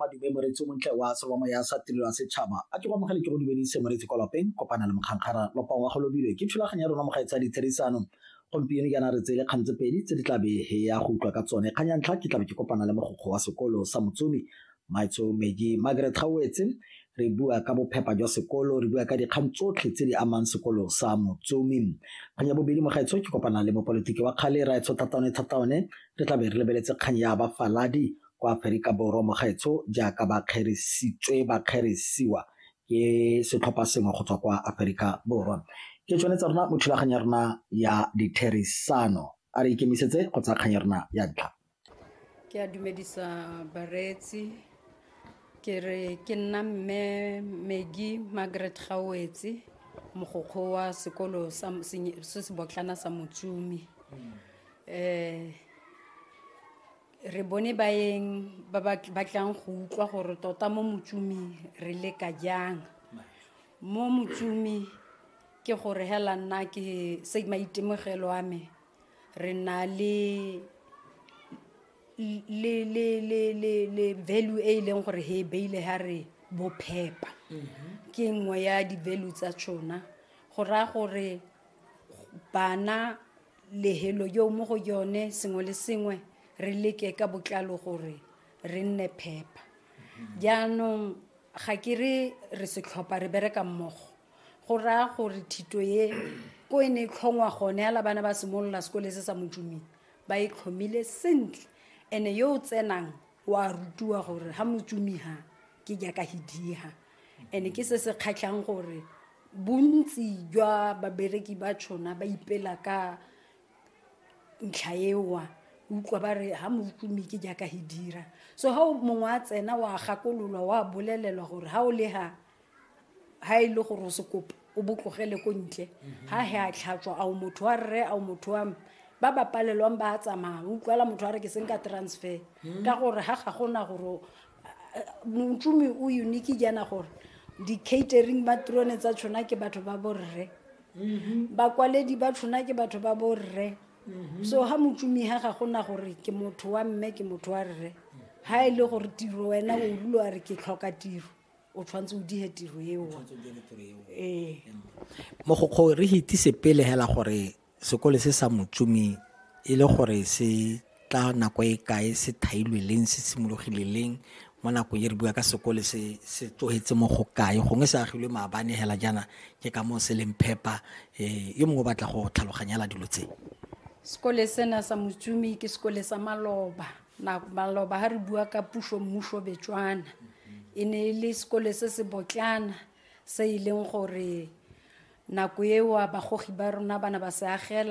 madume moreetsi o montle wa selo wa moya sa tirelo ya setšhaba a ke go amogele ke go dumedise moreetsi kwa lapeng kopana le mokgangkgara lopa wa go lobilwe ke thulaganyo ya rona mogae tsa ditherisano gompieno jaana re tseye kgang tse pedi tse di tlabe he ya go utlwa ka tsone kgang ya ntlha ke tlabe ke kopana le mogokgo wa sekolo sa motsomi Maitshomedi, Margaret Gaoetse, Re bua ka bophepa jwa sekolo, re bua ka dikgang tsotlhe tse di amang sekolo sa Motsomi. Kgang ya bobedi, Mogaetsho ke kopana le mopolitiki wa kgale, Raetsho Thataone Thataone. Re tla be re lebeletse kgang ya bafaladi kwa Aferika Borwa, Mogaetsho, jaaka ba kgerisitswe, ba kgerisiwa ke setlhopha sengwe go tswa kwa Aferika Borwa. Ke tsone tsa rona mo thulaganyo ya rona ya ditherisano. A re ikemisetse go tsaya kgang ya rona ya ntlha. Ke a dumedisa bareetsi ke re ke nna mme Megi Margaret Gawetse mogokgo wa sekolo sa senye- se se botlana sa Motsumi eh re bone baeng ba ba ba tlang go utlwa gore tota mo Motsumi re leka jang mo Motsumi ke gore hela nna ke se maitemogelo a me re na le value e e leng gore he e beile ha re bophepa ke nngwe ya di-value tsa tšona go raya gore bana lehelo yo mo go yone sengwe le sengwe re leke ka botlalo gore re nne phepa jaanong ga ke re re setlhopha re bereka mmogo go raya gore thito e ko e ne e tlhongwa gone ala bana ba simolola sekole se sa motsuming ba e tlhomile sentle ene yo o tsenang wa rutiwa gore ha motsumiha ke jaaka hidiha ene ke se se kgatlhang gore bontsi jwa babereki ba tshona ba ipela ka ntlha ewa utlwa ba re ha motumi ke jaaka he dira so ha mongwe a tsena wa gakololwa wa bolelelwa gore ha o le ha ha e le gore o se kopo o botlogele ko ntle ha he a tlhatswa ao motho wa rre ao motho wa ba ba palelwang ba tsamaya utlwala motho wa re ke seng ka transfer hmm. ka gore ha ga gona gore montsomi o unique jaana gore di-catering ba trone tsa tshona ke batho ba borre mm-hmm. bakwaledi ba tshona ke batho ba borre mm-hmm. so ha motsomi ha ga gona gore ke motho wa mme ke motho wa rre ha e le gore tiro wena o rulo a re ke tlhoka tiro o tshwanetse o dihe tiro eo ee mogokgo re hitise pele hela gore sekole se sa motsumi e le gore se tla nako e kae se thailwe leng se simologile leng mo nakong e re bua ka sekole se se tlogetse mo go kae gongwe se agilwe maabane hela jaana ke ka moo se leng phepa um yo mongwe o batla go tlhaloganyela dilo tse sekole sena sa motsumi ke sekole sa maloba na maloba ha re bua ka puso mmuso betswana e ne e le sekole se se botlana se e leng gore nako eo bagogi ba rona ba ne ba se agela